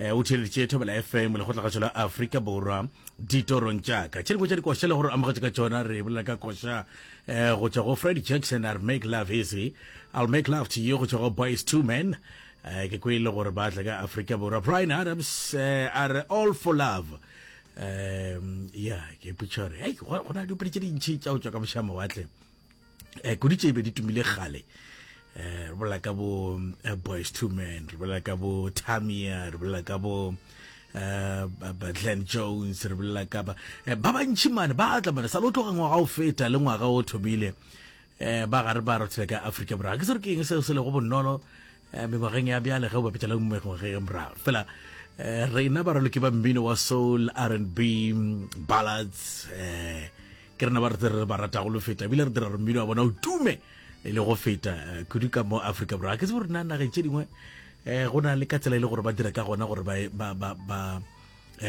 Eh, o theleditše thobela fm lekgotlagatšo la afrika borwa ditorong tšaka tše dingwe tša dikoša le gore amogetše ka tšona re bolela ka koša eh, go tšwa go freddy jackson a re make love easy i'll make love to you go tšwa go boys two men eh, ke kwe e le gore ba tla ka afrika borwa brian adams a re all for love um ya ke putšhore go na dipedi tše dintšhi tša go tšwa ka mošamawatle eh, kudu tše be di tumile gale eh, re bolela ka bo eh, boys two men re bolela ka bo tamia re bolela ka bo Eh, glen jones re bolela ka ba eh, ba bantšhi mane ba tla mane sa le o tloga ngwaga o feta le ngwaga o thomile um ba gare ba rothela ka aforika borwa ke se re ke eng seo se lego bonolo Eh, mengwageng ya bjale ge o bapetša le mengwage e morago fela eh, rena ba raloki ba mmino wa soul r and b mm, ballads um ke rena ba re re ba ratago lo feta ebile re dira gore mmino wa bona o tume e le go feta kudu ka mo aforika borwa ke se gore na nageng tse dingwe um go na le ka tsela e le gore ba dira ka gona gore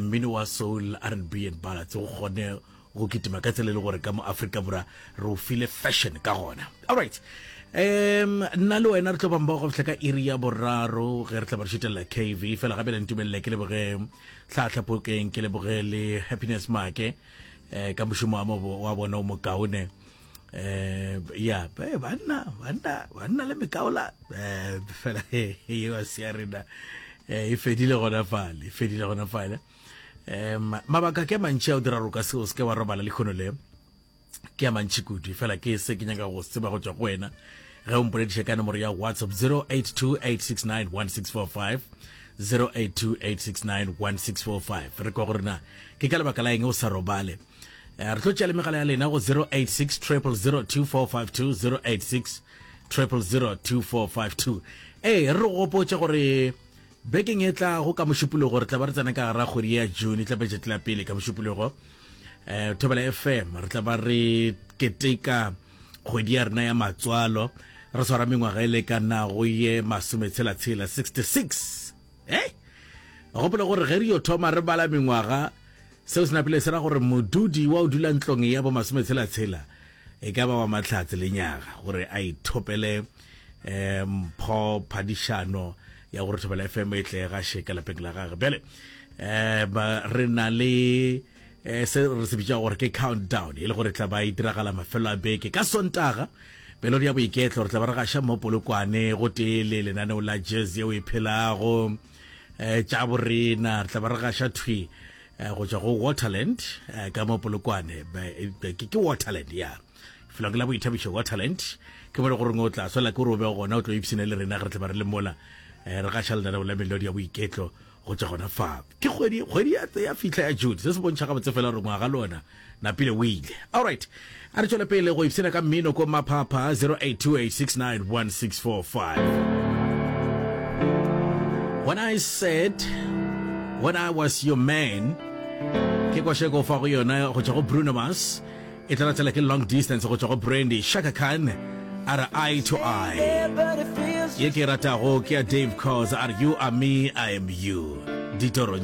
mmino wa soul r and b and ballads o kgone Go kitima ka tsela e le gore ka mo Afrika Bora re o file fashion ka gona. All right. Um, nna le wena re tlo bamba go fihla ka iri ya boraro ge re tla ba re šetelela KV fela gape le ntumelele ke leboge tlhatlhapokeng ke leboge le happiness make eh, ka mošomo wa mo- wa bona o mokaone eh ya eh, banna banna banna le mekaola eh fela e wa sia rena eh e fedile gona fale e fedile gona fale um mabaka ke a mantši a o dira roka seo se ke wa robala lekgono le ke a mantši kudu fela ke se ke nyaka go tseba go tswa go wena ge o mpolediša ka nomoro ya whatsapp 0828691645 0828691645 re kwa go rena ke ka lebaka la eng o sa robale eh, re tlo tšea le megala ya lena go 086 0002452 086 0002452 ee re re gopotse gore Bekeng e tlago ka Mošupologo re tla ba re tsena ka gara kgwedi ya June e tlapetše tlapele ka Mošupologo um Thobela FM re tla ba re keteka kgwedi ya rena ya matswalo re swara mengwaga e lekanago ye masometshela-tshela 66 e gopola gore ge re yo thoma re bala mengwaga Seo se napile se ra gore modudi wa go dula ntlong ya bomasometshela-tshela e ka ba wa Mahlatse le Nyaga gore a ithopele um mpho phadišano ya gore Thobela FM e tle ga šeka lapeng la gage. Bjale um re na le um se re se bitša gore ke countdown e le gore tla ba e diragala mafelo a beke ka sontaga pelodi ya boiketlo re tla ba re gaša mo polokwane go tee le lenaneo la jazz yeo e phelago um tša borena re tla ba re gaša thwi um go tswa go waterland um ka mo polokwane ke waterland ya felong la boithabišo waterland ke bone gore o tla swela ke gore o be gona o tlo ipsene le rena re tla ba re le mola um re gaša lenaneo la melodi ya boiketlo go tswa gona fa ke kgwedi ya fitlha ya june se se bontšha gabotse fela gore ngwaga le ona Napile o ile. Alright, a re tšwele pele go ipshina ka mmino ko Maphapha 0828691645. When I said when I was your man ke kwashe ko fa go yona go tšwa go Bruno Mars e tla latela ke long distance go tšwa go Brandy Shaka Khan a re eye to eye ye ke ratago ke ya Dave Cause a re you are me I am you ditoro